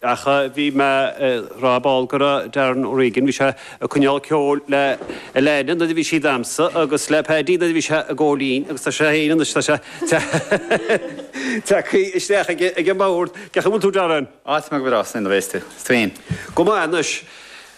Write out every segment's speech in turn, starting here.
Ach bhí mé ag rá ar ball go raibh Darren O'Regan, bhí sé ag coinneáil ceoil le Elena nuair a bhí sí damhsa agus le Paddy nuair a bhí sé ag gabháil fhoinn agus tá sé féin anois, tá sé tagtha isteach aige ag an mbord. Cén chaoi a bhfuil tú, Darren? Á, tá mé go breá, slán a bheas tú. Is tú féin. Go maith anois.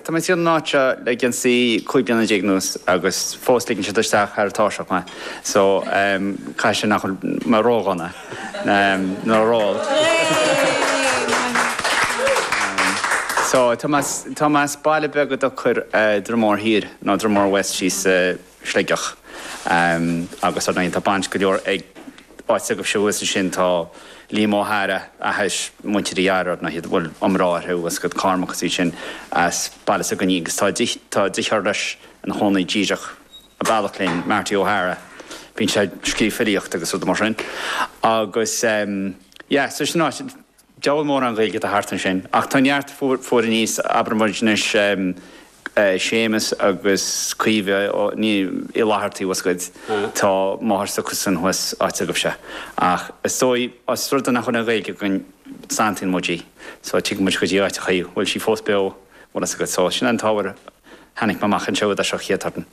Tá mé ag siúl na háite seo le, is dóigh, cúig bliana déag anuas agus fós ligeann siad dom isteach thar táirseach mé so caithfidh sé nach bhfuil mé ró-dhona nó ró-olc. So tá mé as baile beag dá dtugtar Dromore Thiar nó Dromore West thíos i Sligeach agus tá baint go leor ag áit agaibhse thuas ansin. Tá Liam Ó hEára, tá a fhios agat, Muintir Uí Eára, níl a fhios a'm an bhfuil iomrá orthu thuas agaibh, Cormac is iad sin as Baile Easa Caoin agus tá, tá deartháir leis ina chónaí díreach a bealach linn, Marty Ó hEara, bíonn sé ag scríobh filíocht agus rud mar sin agus, yeah, so sin áit. Diabhal mórán Gaeilge atá thart ansin, ach tá neart, fuair a fhios, abraimid anois, Séamus agus Caoimhe Ní Fhlatharta, tá a fhios agat, tá máthair s'acusan thuas as áit agaibhse. Ach is dóigh, os rud é nach bhfuil an Ghaeilge againn, santaíonn muid í, so tig muid go dtí áiteacha a bhfuil sí fós beo, tá a fhios agat. So sin an t-ábhar, tháinig mé amach anseo ar dtús, an chéad turn.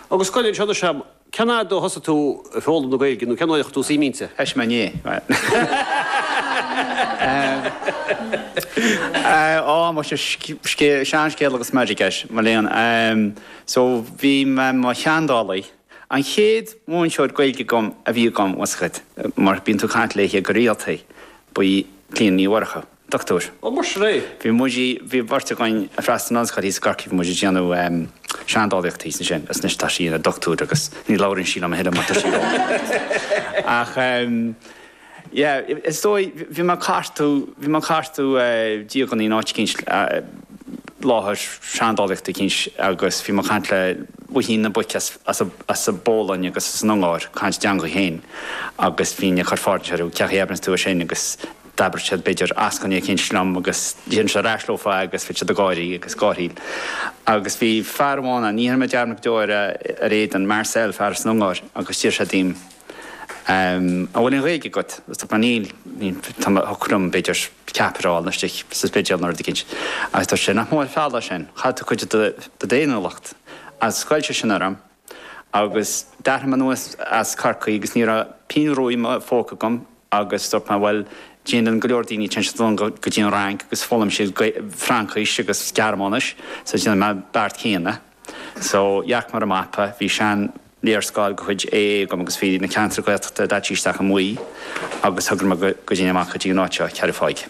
Agus cloigeann anseo anois a'm, Cén uair a thosaigh tú ag foghlaim na Gaeilge nó cén uair a chuir tú suim inti? Éist mé, ní hea. Ó, mo shean-scéal agus meirg air, mo léan. So, bhí mé i mo sheandálaí. An chéad mhúinteoir Gaeilge agam a bhí agam, tá a fhios agat, mar bíonn tú ag caint léithe go rialta, ba í Clíona Ní Mhurchú. Doctúir. Ó, mar sin é? Bhí muid, bhí an bheirt againn a' freastal ar an ollscoil thíos i gCorcaigh, bhí muid a' déanamh ehm, seandálaíochta thíos ansin is anois tá sí ina doctúir agus ní labhraíonn sí liom a thuilleadh mar tá sí ró Ach ehm, yeah, is dóigh, bhí mé a' cartú, bhí mé a' cartú eh, dialannaí in áit eicínt ar láthair seandálaíochta eicínt agus bhí mé a' caint leothu, bhíodh na boic as, as a, as a' bPólainn agus as an Ungáir, caint a dteangaidh féin agus bhínn a' cur ceisteanna orthu, cén chaoi a ndeir tú sin agus D'abraíodh siad b'fhéidir eascainí eicínt liom agus déarfainnse ar ais leofa agus bheadh siad ag gáirí agus gárthaíl. Agus bhí fear amháin ann, ní dhéanfaidh mé dearmad go deo air, ar a éadan, Marcel, fear as an Ungáir, agus d'iarr sé díom An bhfuil aon Ghaeilge agat? Agus dúirt mé Níl, níl, tá mé, thiocfadh liom b'fhéidir ceapaire a fháil istigh sa Spidéal nó rud eicínt. Agus dúirt sé Nach mór an feall é sin, chaill tú cuid de d'fhéiniúlacht. Agus ghoill sé sin orm. Agus d'athraigh mé aníos as Corcaigh agus ní raibh pingin rua i mo phóca agam agus dúirt mé bhuel déanann go leor daoine, téann siad anonn go dtí an Fhrainc agus foghlaimíonn siad Fraincis agus Gearmáinis so déanfaidh mé an beart céanna. So dhearc mé ar an mapa, bhí seanléarscáil de chuid AA agam agus bhí na ceantair Ghaeltachta daite isteach i mbuí agus thogair mé go dtéinn amach go dtí an áit seo, Ceathrú Thaidhg.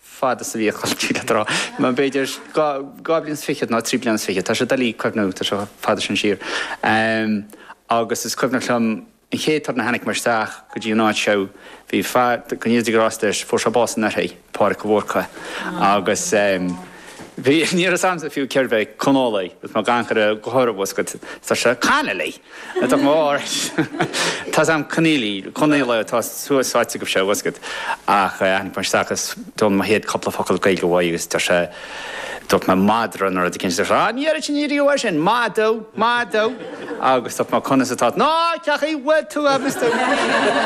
fad is a bhí a chlann ag dul ar scoil. B'fhéidir dhá bhliain is fichead nó trí bliana is fichead, tá sé doiligh cuimhneamh, tá sé chomh fada sin siar. Agus is cuimhneach liom an chéad turn a tháinig muid isteach go dtí an áit seo, bhí fear, go ndéana Dia grásta air, fuair sé bás anuraidh, Pádraic de Búrca. Agus bhí, ní raibh a fhios a'msa fiú cérbh é Conghóile, agus gan go raibh go háirithe oscailte, tá sé, Conneely! Tá mó árais. Tá's a'm Conneely, Conghaola atá suas sáite agaibhse a bhoscad. Ach tháinig mé isteach agus d'fhoghlaim mé mo chéad cupla focal Gaeilge uaidh agus deir sé, dúirt mé madra nó rud éicint, deir sé, ah, ní airigh sin, ní airigh uaidh sin, madadh, madadh. Agus dúirt mé, conas atá, ná cén chaoi a bhfuil tú a Mister.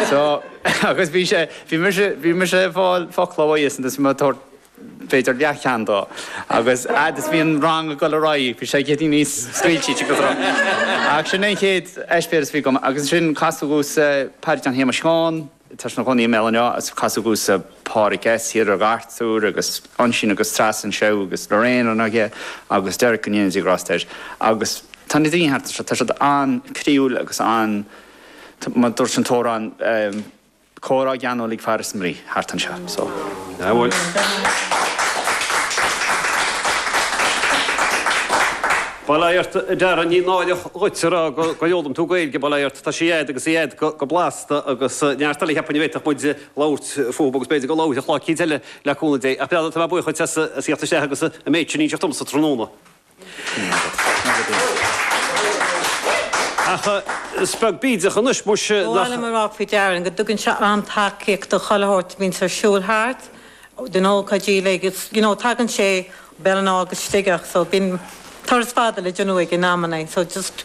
So, agus bhí sé, bhí mise, bhí mise ag fáil focla uaidhsean, bhí mé ag tabhairt, b'fhéidir leathcheann dó agus fhad is bhí an rang ag dul ar aghaidh bhí sé ag éirí níos scaoilte agus ach sin é an chéad eispéireas a bhí agam agus ansin casadh ormsa Paddy John Shéamais Sheáin tá sé ina chónaí i mBéal an Átha agus casadh ormsa Pádraig S thiar i gCartúr agus Uinsíonn agus Treasa anseo agus Lorraine an Fhiche agus Derek go ndéana Dia grásta air agus tá na daoine thart anseo tá siad an-chroíúil agus mar a dúirt an t-amhrán Comhrá geanúil ag fear is mnaoi thart anseo so. Nach bhfuil. Bail ó Dhia ort a Darren, ní náireach dhuit a rá gur fhoghlaim tú Gaeilge, bail ó Dhia ort, tá sí a'd agus í a'd go blasta agus neart eile cheapfainn a bhféadfadh muid labhairt fúthu agus b'fhéidir go labhróidh i gclár éicint eile le cúnamh Dé ach tá muid buíoch duit as a theacht i láthair agus an méid sin a inseacht domsa tráthnóna. Ach is beag bídeach anois, muis, nach. Ba mhaith liom a rá faoi Darren go dtugann sé an-tacaíocht do chuile shórt a bhíonns ar siúl thart, do na hócáidí uilig, agus you know tagann sé Béal an Átha go Sligeach so bíonn turas fada le déanamh aige in amannaí so just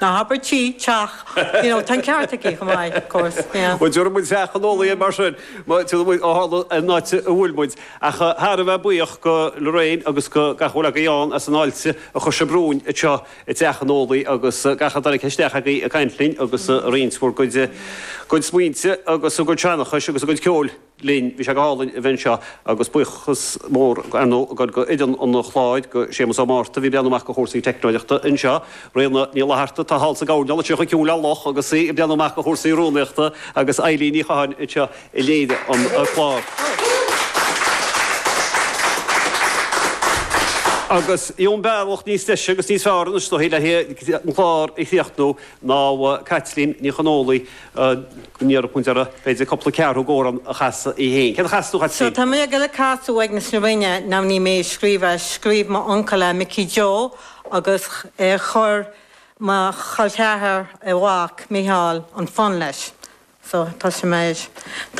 ná habair tigh, teach, you know, tá an ceart aici chomh maith, of course, yeah. Bhuel, deireann muid Teach Chonghóile é mar sin, mar tá muid ó tharla an áit a bhfuil muid. Ach thar a bheith buíoch do Lorraine agus do gach a bhfuil agaibh ann as an fháilte a chur sibh romhainn anseo i dTeach Chonghóile agus gach a dtáinig isteach agaibh ag caint linn agus ag roinnt bhur gcuid smaointe agus bhur gcuid seanchais agus bhur gcuid ceoil. linn. Bhí sé go hálainn a bheith anseo agus buíochas mór, ar ndóigh, againn d'fhoireann an chláir, do Shéamus Ó Márta a bhí ag breathnú amach do chúrsaí teicneolaíochta anseo, Ríona Ní Fhlatharta atá thall sa gcoirnéal anseo chomh ciúin le luch agus í ag breathnú amach do chúrsaí rúnaíochta agus Eilín Ní Chatháin anseo a léirigh an clár. Agus cén bealach níos deise agus níos fearr anois dúinn le haghaidh an clár a chríochnú ná Caitlín Ní Chonghóile. go n-iarrfadh muid uirthi, b'fhéidir, cúpla ceathrú d'amhrán a chasadh í fhéin. Céard a chasfas tú, a Chaitlín? Tá mé ag goil ag casadh ag na smirinne now ní mé a scríobh é. Scríobh m'uncail é, Micí Joe, agus chuir mo cholcheathar, a mhac, Micheál, an fonn leis. So, tá sin mar.